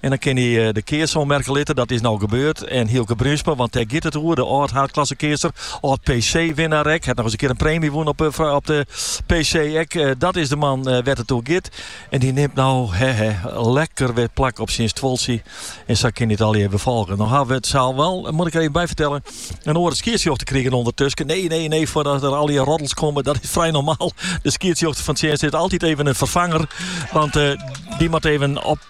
En dan kin hij de keats oanmerke litte. Dat is no gebeurd. En Hielke Bruinsma, want dêr giet it oer. De âld-haadklassekeatser, âld-PC-winnaar ek. Hat noch eens in kear in preemje wûn op, op de PC ek. Dat is de man wêr't it oer giet. En dy nimt no hè hè, lekker wer plak op syn stuoltsje. En sa kin hij it allegear wol folgje. No hawwe we it sa'l wol, moat ik der even by fertellen, in oare skiedsrjochter krigen ûndertusken. Nee, nee, nee, foardat der allegear roddels komme. Dat is frij normaal. De skiedsrjochter fan tsjinst is altyd even in ferfanger. Want dy moat even op.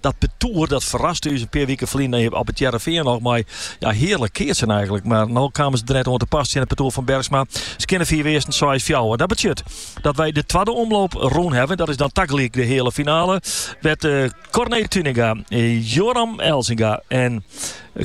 Dat partoer dat ferraste ús in pear wiken ferlyn op it Hearrenfean noch mei ja, hearlik keatsen eigentlik. Mar no kamen se der net oan te pas tsjin it partoer fan Bergsma. Se kinne fiif earsten, seis fjouwer. Dat betsjut dat wy de twadde omloop rûn hawwe. Dat is dan tagelyk de heale finale. Wêr't uh, Corné Tuinenga, uh, Jorn Elzinga en uh,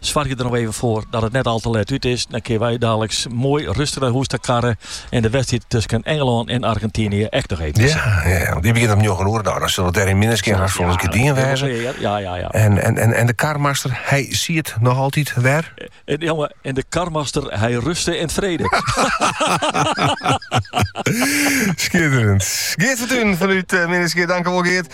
Soargje der noch even foar dat it net al te let út is. Dan kinne wy daliks moai rustich nei hûs ta karre en de wedstriid tusken Engelân en Argentynje ek noch even te sjen. Ja, ja, ja. Die begjint om njoggen oere. Nou, dan sil it dêr yn Minnertsgea hast folslein gedien wêze. Ja, ja, ja, ja. En, en, en, en de karmaster, hy siet noch altyd wer. En, eh, jongen, en de karmaster, hy ruste in vrede. Schitterend. Geert van Tuinen vanuit uh, eh, Minnertsgea, tankewol Geert.